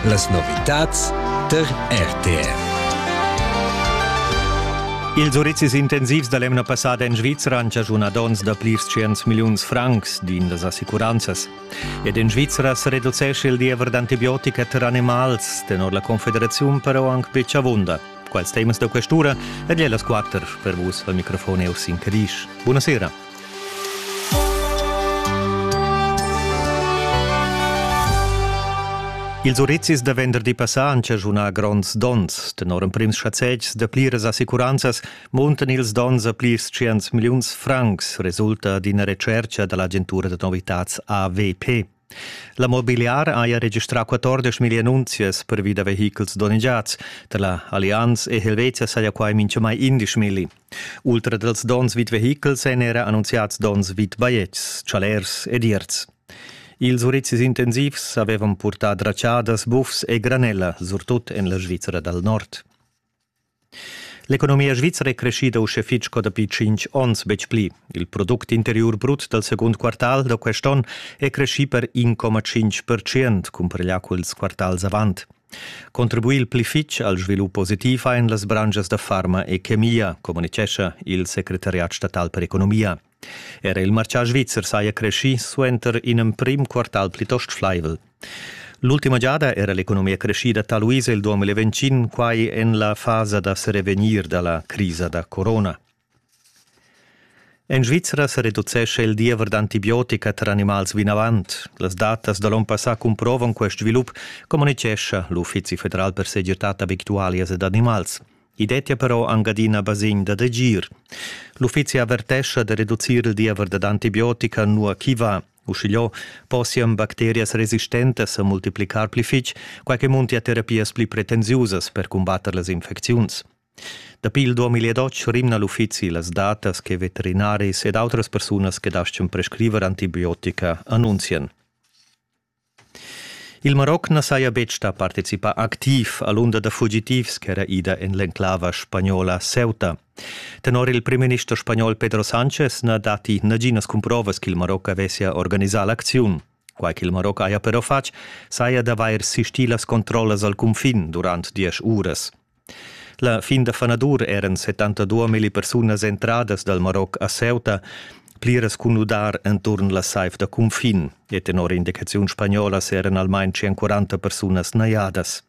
Las novitads tar RTR. Ils urizis intensivs da l'emna passada en Svizra han chaschunà donns da plirs tschients milliuns francs, din las assicuranzas. Ed en Svizra sa reducescha il diever d'antibiotica tar animals, tenor la Confederaziun però anc betg avunda. Quals temas da questura ed las quatter per vus al microfon è Ursin Cadisch. Buonasera. Ils urizis da venderdi passà han chaschunà gronds donns. Tenor emprims schazetgs da pliras assicuranzas muntan ils donns a plis 100 milliuns francs, resulta d'ina retschertga da l'agentura da novitads AVP. La mobiliara haja registrà 14 million annunzias pervi da vehichels donnegiads. Tar la Allianz e Helvetia saja quai minchamai 11 milli. Ultra dals donns vid vehichels èn era annunziads donns vid bajetgs, chalers ed ierts. Ils urizis intensivs avevan purtà dratschadas, bufs e granella, surtut en la Svizra dal Nord. L'economia svizra è creschida uschè fitg sco dapi tschintg onns, betg pli. Il product interiur brut dal segund quartal da quest onn è creschì per 1,5 percent, cumpareglià culs quartals avant. Contribuir il pli fitg al svilup positiv ein las branschas da farma e chemia, communitgescha il secretariat statal per economia. Era il martgà svizzer saja creschì suenter in emprim quartal plitost flaivel. L'ultima giada era l'economia creschida taluisa il 2020, quai en la fasa da serevegnir da la crisa da corona. En Svizra se reducesce il diever d'antibiotica tra animals vinavant. Las datas da l'on passà cumprovan quest svilup, communicescha l'Uffizi federal per segirtad abitualias ed animals. I dettia però anc adina basegn dad agir. L'uffizi avertescha da reducir il diever dad antibiotica nua ch'i va. Uschigliò possian bacterias resistentas sa multiplicar pli fitg, quai che muntia terapias pli pretensiusas per cumbatter las infecziuns. Dapi il 2012 rimna l'uffizi las datas che veterinaris ed autras persunas che daschian prescriver antibiotica annunzian. Il Maroc na saja betg stà participà activ a l'unda da fugitivs ch'era ida en l'enclava spagnola Ceuta. Tenor il primminister spagnol Pedro Sánchez na datti naginas cumprovas ch'il Maroc avessia organisà l'acziun. Quai ch'il Maroc haja però fatg saja d'avair sistì las controllas al cunfin durant diesch uras. La fin da fanadur eran 72 milli persunas entradas dal Maroc a Ceuta, pliras cun nudar enturn la saiv da cunfin, e tenor indicaziun spagnola eran almain 140 persunas najadas.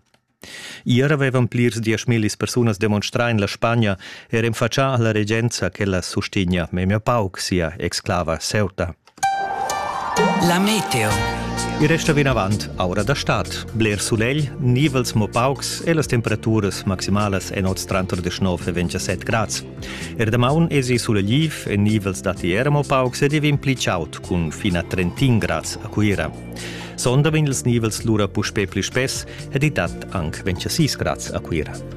Ier avevan plirs dieschmillis persunas demonstrar en la Spagna er en faccia alla regenza che la sustigna memia pauc sia exclava Ceuta. La meteo. I resta vinavant aura da stad. Bler sulegl, nivels mo paucs e las temperaturas maximalas en oz tranter 19 e 27 grads. Er damaun esi sulegliv e nivels datti era mo paucs ed divin pli chaud cun fin a 31 grads a Cuira. Sonda vegn ils nivels lura puspè pli spess ed i dat anc 26 grads a Cuira.